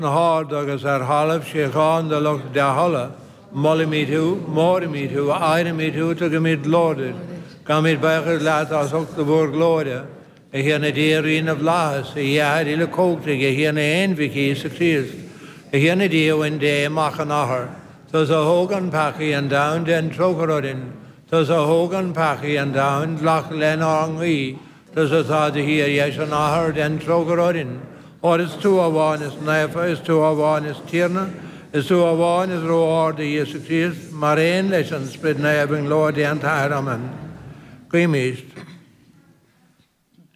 na hArda agus ar thalamh síocháin do lucht dea-thola, molaimid thú, móraimid thú, adhraimid thú, tugaimid glóir duit, gabhaimid baochas leat as ucht do mhórghlóire, a Thiarna Dia, a Rí na bhflaitheas, a Dhia a Athair Uilechumhachtaigh, a Thiarna Aonmhic Íosa Críost, a Thiarna Dia a Uain Dé, Mac an Athar, tusa a thógann peacaí an domhain, dein trócaire orainn, tusa a thógann peacaí an domhain, glac lenár nguí. Tusa atá id shuí ar dheis an Athar, dein trócaire orainn, óir is tú amháin is naofa, is tú amháin is Tiarna, is tú amháin is ró-ard, a Íosa Críost, mar aon leis an Sprid Naomh, i nglóir Dé an tAthair. Amen. Guímíst.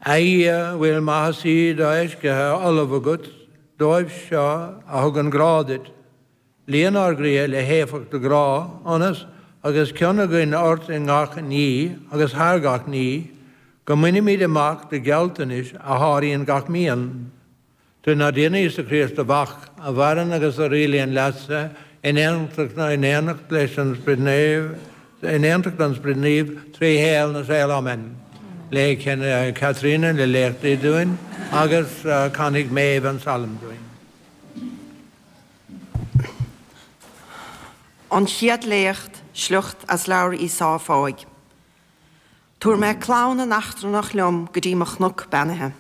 A Dhia, a bhfuil maitheasaí do-fheicithe ullamh agat dóibh seo a thugann grá duit, Líon ár gcroíthe le héifeacht do ghrá ionas, agus cion againn ort i ngach ní agus thar gach ní, go mbainfimid amach do ghealltanais a sháraíonn gach mian. Trínár dTiarna Íosa Críost do Mhac, a mhaireann agus a rialaíonn leatsa in aontacht na in éineacht leis an Sprid Naomh in aontacht an Sprid Naoimh trí shaol na saol. Amen. Léifidh Caitríona na léachtaí dúinn agus canfaidh Méabh an salm dúinn. An chéad léacht, sliocht as leabhar Íseáia Fáidh. Tabharfaidh mé clanna na n-eachtrannach liom go dtí mo chnoc beannaithe.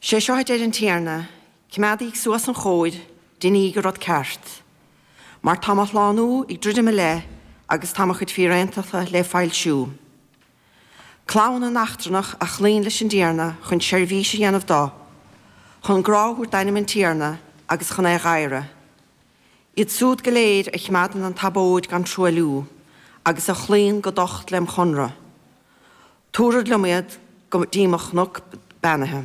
Sé seo a deir an Tiarna, Coimeádaíg suas an chóir, deiníg an rud ceart, mar tá mo shlánú ag druidim i leith agus tá mo chuid fíréantachta le foilsiú. Clanna na n-eachtrannach a chloíonn leis an dTiarna chun seirbhís a dhéanamh dó, chun grá a thabhairt d'ainm an Tiarna agus chun é a dh'adhradh. Iad súd go léir a chimeádann an tsabóid gan truailliú, agus a chloíonn go docht lem chonnradh, tabharfad liom iad go dtí mo chnuc beannaithe.